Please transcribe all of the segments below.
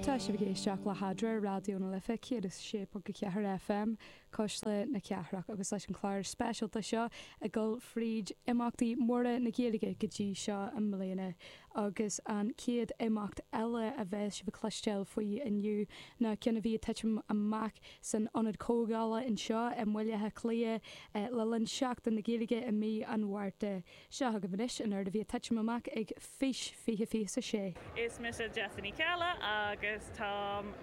Tá sibh ag éisteacht le hEadra, Raidió na Life 106.4 FM, cuisle na cathrach, agus leis an chlár speisialta seo ag dul fríd imeachtaí móra na Gaeilge go dtí seo i mbliana. Agus an chéad imeacht eile a bheas sibh ag cloisteáil faoi inniu ná ceann a bhí ag titim amach san Ionad Comhdhála anseo i mBaile Átha Cliath le linn Seachtain na Gaeilge i mí an Mhárta. Seo agaibh anois an ard a bhí ag titim amach ag Fís 2026. Is mise Jessie Ní Cheallaigh agus táim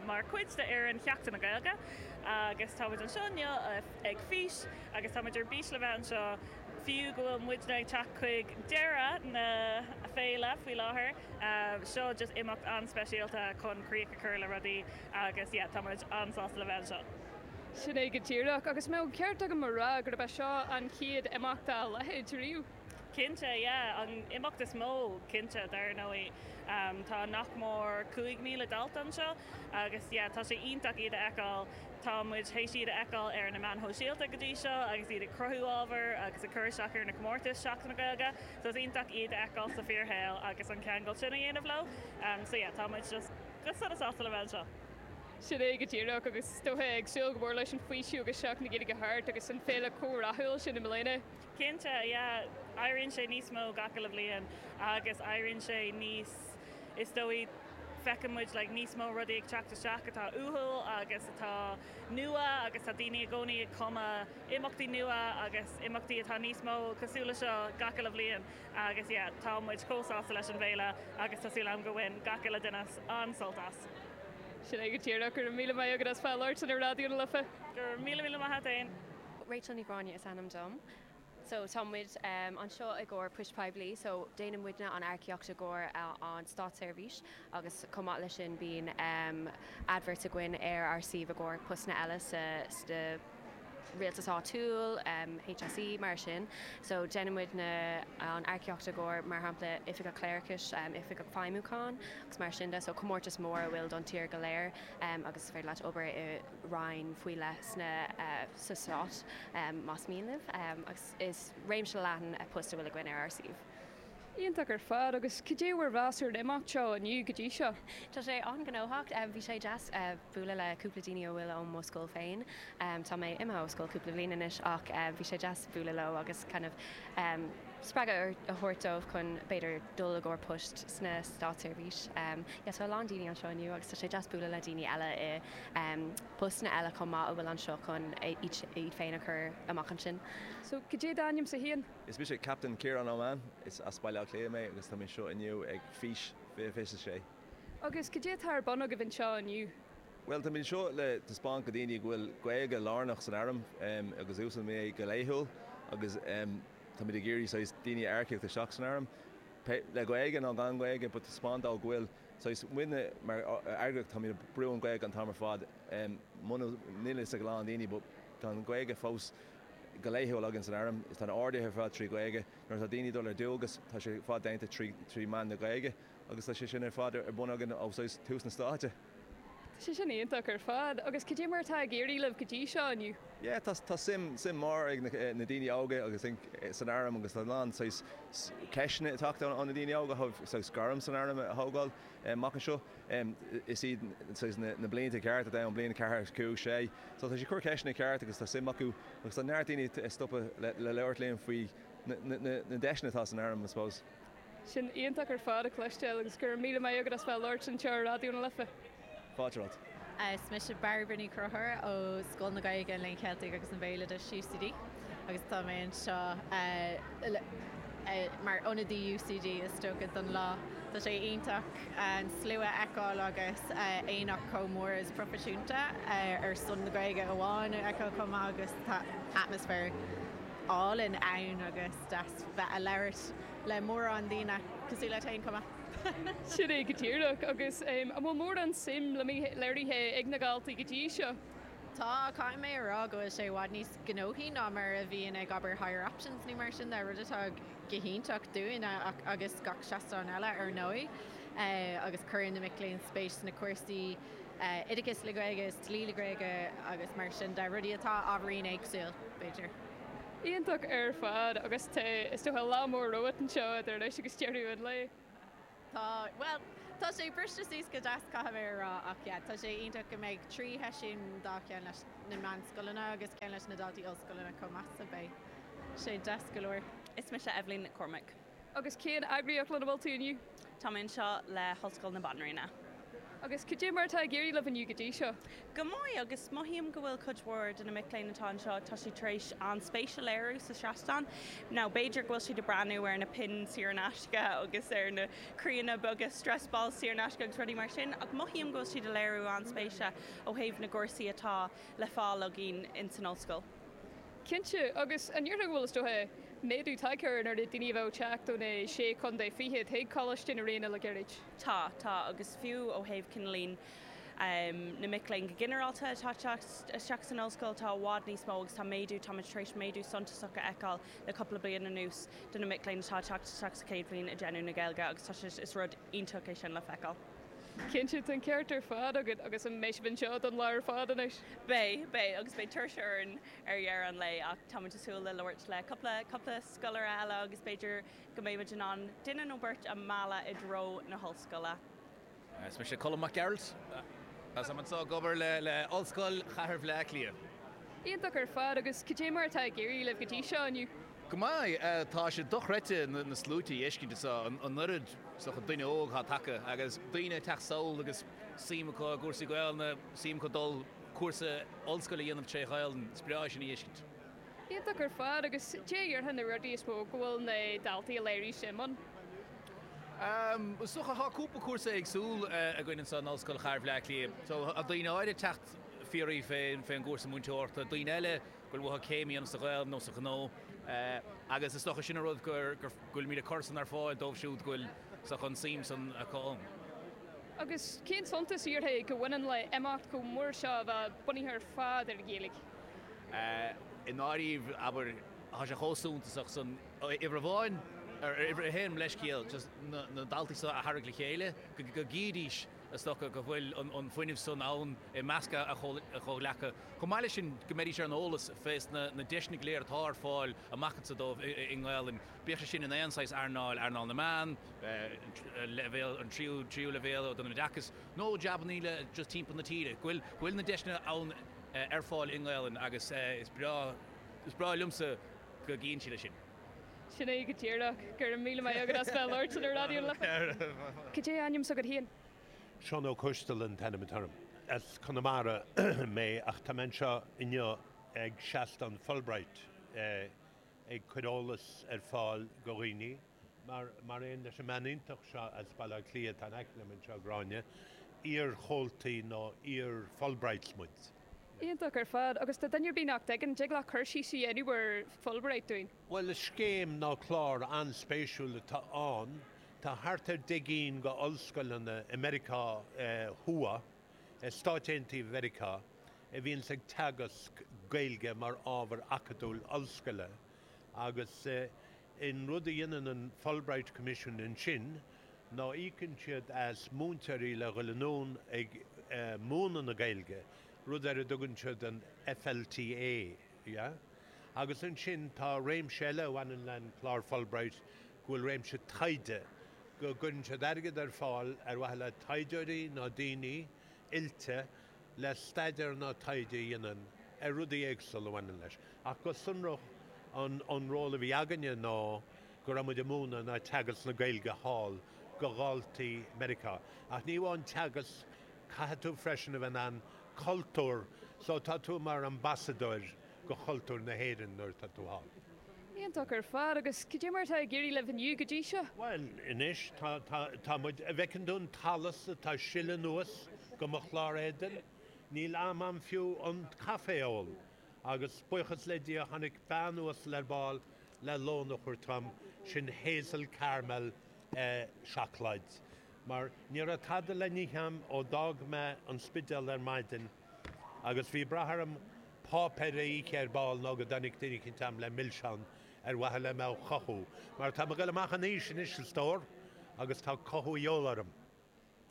mar chuid de fhoireann Sheachtain na Gaeilge agus táimid anseo inniu ag Fís agus táimid ar bís le bheith anseo fiú go bhfuil muidne ag teacht chuig deireadh na féile faoi láthair. Seo just imeacht an-speisialta chun críoch a chur le rudaí agus yeah táimid an-sásta le bheith anseo. Sin é go díreach. Agus an mbeadh ceart agam a rá gurb é seo an chéad imeacht dá leithéid riamh? Cinnte, yeah. An imeacht is mó, cinnte, dar ndóigh. Tá nach mór 5,000 dalta anseo agus yeah, tá sé iontach iad a fheiceáil. Tá muid théis iad a fheiceáil ar na meáin shóisialta go dtí seo agus iad ag cruthú ábhar agus ag cur isteach ar na comórtais Seachtain na Gaeilge. So is iontach iad a fheiceáil sa bhfíorshaol agus an ceangal sin a dhéanamh leo. So yeah, tá muid just go sona sásta le bheith anseo. Sin é go díreach, agus is dóiche ag súil go mór leis an faoiseamh agus Seachtain na Gaeilge thart agus an féile chomh rathúil sin i mbliana. Cinnte, yeah. Éiríonn sé níos mó gach uile bhliain agus éiríonn sé níos, is dóigh, feiceann muid like níos mó rudaí ag teacht isteach atá uathúil agus atá nua agus tá daoine i gcónaí ag cumadh imeachtaí nua agus imeachtaí atá níos mó cosúil le seo gach uile bhliain agus yeah, tá muid chomh sásta leis an bhféile agus tá súil agam go bhain gach uile duine an-sult as. Sin é go díreach. Go raibh míle maith agat as labhairt ar Raidió na Life. Go raibh míle míle maith a't fhéin. Rachel Ní Ghráinne is ainm dom. So tá muid anseo i gcomhair poist poiblí so déanann muidne an earcaíocht i gcomhair an státseirbhís agus chomh maith leis sin bíonn adverts againn ar ár suíomh i gcomhair postanna eile sa Rialtas Áitiúil, HSE, mar sin. So déanann muid na, an earcaíocht i gcomhair, mar shampla, Oifigeach Cléireachais, Oifigeach Feidhmiúcháin agus mar sin de. So comórtas mór a bhfuil don tír go léir agus is féidir leat obair i Roinn faoi leith sna, sa Stát más mian libh agus is réimse leathan poist a bhfuil againn ar ár suíomh. Iontach ar fad, agus cad é bhur mheas ar an imeacht seo inniu go dtí seo? Tá sé an-ghnóthach. Bhí sé deas bualadh le cúpla daoine a bhfuil ó mo scoil féin. Tá mé imithe ó scoil cúpla bliain anois ach bhí sé deas bualadh leo agus kind of spreagadh a thabhairt dóibh chun b'fhéidir dul i gcomhair poist sna státseirbhís. Yeah, tá a lán daoine anseo inniu agus tá sé deas bualadh le daoine eile i bpostanna eile chomh maith a bhfuil anseo chun iad féin a chur amach ansin. So, cad é d'ainm-sa féin? Is mise Captain Kieran Ó Main. Is as Baile Átha Cliath mé agus tá mé anseo inniu ag Fís 2026. Agus cad é atá ar bun agaibh anseo inniu? Bhuel, táimid anseo le taispeáint do dhaoine go bhfuil Gaeilge lárnach san Airm agus úsáidtear é go laethúil agus táimid ag iarraidh saghas daoine a earcaíocht isteach san Airm, le Gaeilge nó gan Gaeilge, but taispeáint dóibh go bhfuil saghas, muidne mar eagraíocht táimid ag brú na Gaeilge an t-am ar fad, níl a fhios ag a lán daoine but tá an Gaeilge fós. go laethúil againn san Airm is tá na horduithe ar fad trí Ghaeilge. Nuair atá daoine ag dul ar dualgas tá sé ar fad déanta trí trí mheán na Gaeilge agus tá sé sin ar fad ar bun againn ó thús na stáite. Tá sé sin iontach ar fad agus cad é mar atá ag éirí libh go dtí seo inniu? Yeah tá tá suim suim mór ag na na daoine óga I think san Airm agus tá a lán saghas ceisteanna ag teacht ó na daoine óga ó thaobh saghas gairm san Airm a thógáil amach anseo. Is iad na blianta cearta ann, bliain a ceathair, a cúig, a sé. So tá siad ag cur ceisteanna cearta agus tá suim acu agus tá neart daoine ag stopadh le labhairt linn faoi na deiseanna atá san Airm I suppose. Sin iontach ar fad a chloisteáil agus go raibh míle maith agat as bheith ag labhairt anseo ar Raidió na Life. Fáilte romhat. Is mise Bairbre Ní Chonchúir ó Scoil na Gaeilge, an Léinn Cheiltigh agus an Bhéaloidis, UCD. agus tá mé anseo mar ionadaí UCD is dócha don lá. Tá sé iontach an slua a fheiceáil agus aonach chomh mór is proifisiúnta ar son na Gaeilge amháin a fheiceáil chomh maith agus tá atmaisféar álainn ann agus deas bheith ag labhairt le mórán daoine cosúil leat fhéin chomh maith. Sin é go díreach agus an bhfuil mórán suim léirithe ag na daltaí go dtí seo? Tá, ach caithfidh mé a rá go bhfuil sé i bhfad níos gnóthaí ná mar a bhíonn ag, abair, Higher Options nó mar sin de, rud atá go hiontach dúinn agus gach seastán eile ar ndóigh. Agus cuireann na mic léinn spéis sna cúrsaí oideachais le Gaeilge is dlí le Gaeilge agus mar sin de, rudaí atá ábhairín éagsúil, b'fhéidir. Iontach ar fad. Agus tá, is dócha, lá mór romhat anseo idir anois agus deireadh an lae. Tá, bhuel, tá sé briste suas go deas caithfidh mé a rá ach yeah, tá sé iontach go mbeidh trí sheisiún dhá cheann leis na meánscoileanna agus ceann leis na daltaí ollscoileanna chomh maith so beidh sé deas go leor. Is mise Eibhlín Nic Cormaic. Agus cén eagraíocht lena bhfuil tú inniu? Tá mé anseo le hOllscoil na Banríona. Agus cad é mar atá ag éirí libh inniu go dtí seo? Go maith, agus mothaím go bhfuil cuid mhór de na mic léinn atá anseo, tá siad tar éis an-spéis a léiriú sa seastán, nó b'fhéidir go bhfuil siad ag breathnú ar na pinn saor in aisce agus ar na croíanna beaga stress balls saor in aisce agus rudaí mar sin, ach mothaím go bhfuil siad ag léiriú an-spéise ó thaobh na gcúrsaí atá le fáil againn in san ollscoil. Cinnte, agus an ndéarfá go bhfuil, is dócha, méadú tagtha ar an oiread daoine a bheadh ag teacht ó na sé chontae fichead chuig Coláiste na Ríona le gairid? Tá, tá, agus fiú ó thaobh cineál. na mic léinn go ginearálta atá teacht isteach san Ollscoil, tá i bhfad níos mó agus tá méadú, táimid tar éis méadú suntasach a fheiceáil le cúpla bliain anuas do na mic léinn atá teacht isteach sa chéad bhliain ag déanamh na Gaeilge agus tá sé, is rud iontach é sin le feiceáil. Cinnte, tá an ceart ar fad agat agus an mbeidh sibh anseo don lá ar fad anois? Beidh, beidh agus beidh tuirse orainn ar deireadh an lae ach táimid ag súil le labhairt le cúpla, cúpla scoláire eile agus b'fhéidir go mbeimid in ann duine nó beirt a mhealladh i dtreo na hOllscoile. Is mise Colm Mac Gearailt. Táim anso ag obair le Ollscoil Chathair Bhleá Cliath. Iontach ar fad, agus cad é mar atá ag éirí libh go dtí seo inniu? Go maith, tá sé dochreidte na sluaite a fheiscint anso, an oiread san daoine óga atá tagaithe agus daoine ag teacht sall agus suim acu i gcúrsaí Gaolainne, suim acu dul cúrsa ollscoile a dhéanamh tré Ghaolainn, is breá é sin a fheiscint. Iontach ar fad, agus cad a déarfá na rudaí is mó go bhfuil na daltaí ag léiriú suim ann? Is dócha, tá cúpla cúrsa éagsúil againn anseo in Ollscoil Chathair Bhleá Cliath. So, tá daoine áirid ag teacht ag fiafraí fén gcúrsa múinteoireachta, daoine eile go bhfuil uathu céim a dhéanamh sa Ghaeilg nó sa ghnó. Agus is dócha sin an rud go bhfuilimíd ag cur san ar fáil dóibh siúd go bhfuil an suim san acu ann. Agus cén suntas a déarfá go mbaineann le imeacht chomh mór seo a bheith bunaithe ar fad ar an Ghaeilg? I ndáiríre, abair, tá sé chomh suntasach san, uimhir amháin, or uimhir a haon, mo leithscéal, just na daltaí so a tharraingt le chéile, go gcífidís, is dócha, go bhfuil an fuinneamh san ann i measc a gcomhghleacaithe. Chomh maith leis sin, go mbeidís ar an eolas fés na deiseanna go léir atá ar fáil amach anso dóibh i nGaolainn, bíodh sé sin in aon saghas earnáil, earnáil na meán, leibhéal, an tríú leibhéal don oideachas, nó jabannaí eile, just timpeall na tíre, go bhfuil na deiseanna ann. ar fáil i nGaelainn agus is breá liomsa go gcíonn siad é sin. Sin é go díreach. Go raibh míle maith agat as bheith ag labhairt le Raidió na Life. Cad é ainm s'agat féin? Seán Ó Coistín an t-ainm atá orm. As Conamara mé ach tá mé anseo inniu ag seastán Fulbright ag cur eolas ar fáil go dhaoine. mar aon leis an mbean iontach seo as Baile Átha Cliath, tá in aice liom anseo, Gráinne, iar-chomhaltaí nó iar-Fulbright muid. Iontach ar fad. Agus do dhuine ar bith nach dtuigeann, dtig leat cur síos a dhéanamh ar Fulbright dúinn? Bhuel, is scéim nó clár an-spéisiúil atá ann. Tá thart ar deich gcinn go ollscoileanna i Meiriceá Thuaidh, i Stáit Aontaithe Mheiriceá, a bhíonns ag teagasc Gaeilge mar ábhar acadúil ollscoile agus, An rud a dhéanann an Fulbright Commission ansin ná íocann siad as múinteoirí le dhul anonn ag múineadh na Gaeilge, rud ar a dtugann siad an FLTA, yeah? Agus ansin tá réimse eile a bhaineann leis an gclár Fulbright go bhfuil réimse taighde, go gcuireann siad airgead ar fáil ar mhaithe le taighdeoirí nó daoine oilte le staidéar nó taighde a dhéanamh ar rudaí éagsula a bhaineann leis. Ach go sonrach an ról a bhí againne ná go raibh muid ag múineadh nó ag teagasc na Gaeilge thall do dhaltaí Meiriceá. Ach ní amháin teagasc, caithfidh tú freisin a bheith in ann cultúr, so tá tú mar ambasadóir, do chultúr na hÉireann nuair atá tú thall. Iontach ar fad. Agus cad é mar atá ag éirí libh inniu go dtí seo? Bhuel, anois tá, tá, tá muid, an bhfeiceann tú an t-allas atá ag sileadh anuas de mo chlár éadain? Níl am a'm fiú an caife a ól. Agus buíochas le Dia tháinig bean uasal ar ball le lón a thabhairt dhom, sin hazel caramel eh seacláid. Mar ní raibh tada le n-ithe a'm ó d'fhág mé an Spidéal ar maidin. Agus bhí brath orm páipéar a ithe ar ball nó go dtáinig duine eicínt agam le milseán ar mhaithe le mé a chothú, mar tá mé ag goil amach in aois anois, a stór, agus tá cothú de dhíobháil orm.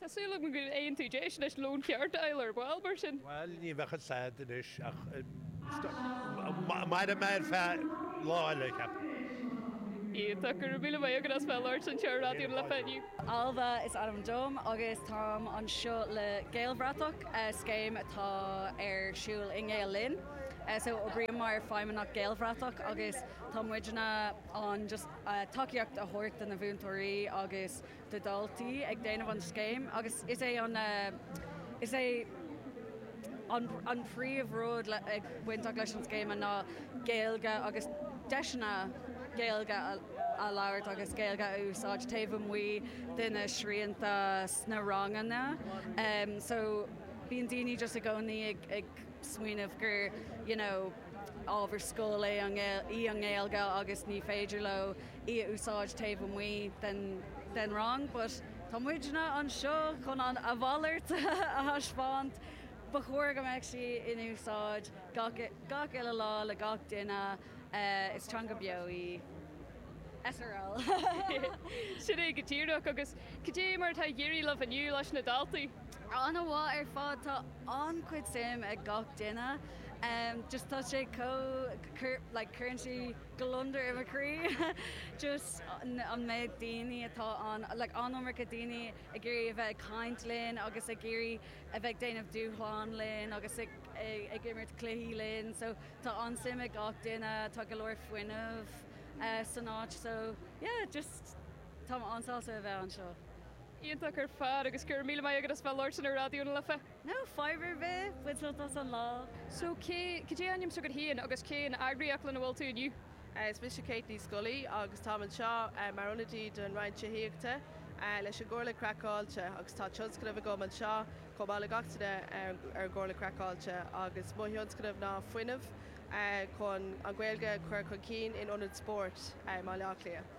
Tá súil agam go mbeidh tú in ann deis lón ceart a fháil ar ball, mar sin. Bhuel, ní bheadh fhios a'd anois, ach mairfidh mé ar feadh lá eile, cheapfainn. Iontach, go raibh míle maith agat as bheith ag labhairt le Raidió Fáilte inniu. Ailbhe is ainm dom agus táim anseo le Gaelbhratach, scéim atá ar siúl i nGael Linn. So oibrím mar Feidhmeannach Gaelbhratach agus tá muidne ann just tacaíocht a thabhairt do na múinteoirí agus do dhaltaí ag déanamh an scéim agus is é an is é. An príomh rud ag bainteach leis an scéime ná Gaeilge agus deiseanna Gaeilge a labhairt agus Gaeilge a úsáid taobh amuigh de na srianta sna ranganna. So bíonn daoine just i gcónaí ag smaoineamh gur you know ábhar scoil é í an Ghaeilge agus ní féidir leo í a úsáid taobh amuigh den rang but. Tá muidne anseo chun an a mhalairt a thaispeáint. Ba chóir go mbeadh sí in úsáid gach uile lá le gach duine. Is teanga bheo í srl. Sin é go díreach. Agus cad é mar atá ag éirí libh inniu leis na daltaí? An-mhaith ar fad. Tá an-chuid suim ag gach duine. Just tá sé chomh like cuireann sí. gliondar i mo chroí just an méid daoine atá ann like an-iomarca daoine ag iarraidh a bheith ag caint linn agus ag iarraidh a bheith ag déanamh dúshlán linn agus ag ag imirt cluichí linn so tá an-suim ag gach duine tá go leor fuinnimh eh san áit so yeah just táim an-sásta a bheith anseo. Iontach ar fad agus go raibh míle maith agat as bheith labhairt ar an Raidió na Life. No fadhb ar bith, bain sult as an lá. So cé, cad é ainm s'agat féin agus cén eagraíocht lena bhfuil tú inniu? Is mise Kate Ní Scolaí agus táim anseo mar ionadaí don Roinn Tithíochta leis an gComhairle Craiceáilte agus tá tionscnamh agam anseo chomh maith le gach duine ar an gComhairle Craiceáilte agus mo thionscnamh ná fuinneamh chun an Ghaeilge a chur chun cinn in ionaid spóirt i mBaile Átha Cliath.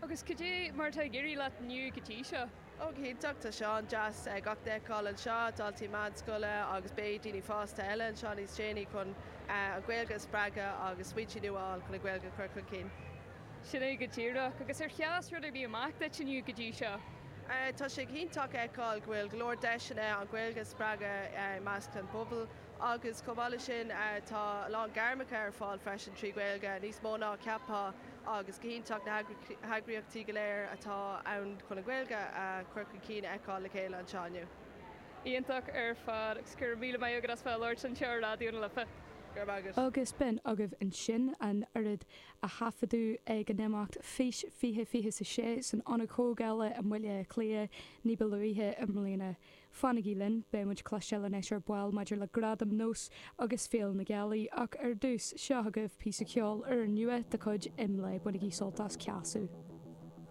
Agus cad é mar atá ag éirí leat inniu go dtí seo? Ó go hiontach, tá sé an-deas gach duine a fheiceáil anseo, daltaí meánscoile agus beidh daoine fásta eile anseo níos déanaí chun an Ghaeilge a spreagadh agus smaointe nua a fháil chun an Ghaeilge a chur chun cinn. Sin é go díreach. Agus ar sheas rud ar bith amach duit inniu go dtí seo? Tá sé go hiontach a fheiceáil go bhfuil go leor deiseanna an Ghaeilge a spreagadh i measc an phobail agus chomh maith leis sin tá a lán gairmeacha ar fáil freisin trí Ghaeilge, níos mó ná a cheapfá. agus go hiontach na heagraíochtaí go léir atá ann chun an Ghaeilge a chur chun cinn a fheiceáil le chéile anseo inniu. Iontach ar fad agus go raibh míle maith agat as bheith a labhairt anseo ar Raidió na Life. Go raibh maith agat. Agus b'in agaibh ansin an t-ábhar a thaifeadadh ag an imeacht Fís 2026 san Ionad Comhdhála i mBaile Átha Cliath ní ba luaithe i mbliana. Fanaigí linn, beidh muid ag cloisteáil anois ar ball maidir le Gradaim Nós agus Féile na Gealaí ach ar dtús, seo agaibh píosa ceoil úrnua de chuid Imlé, bainigí sult as! Ceasadh.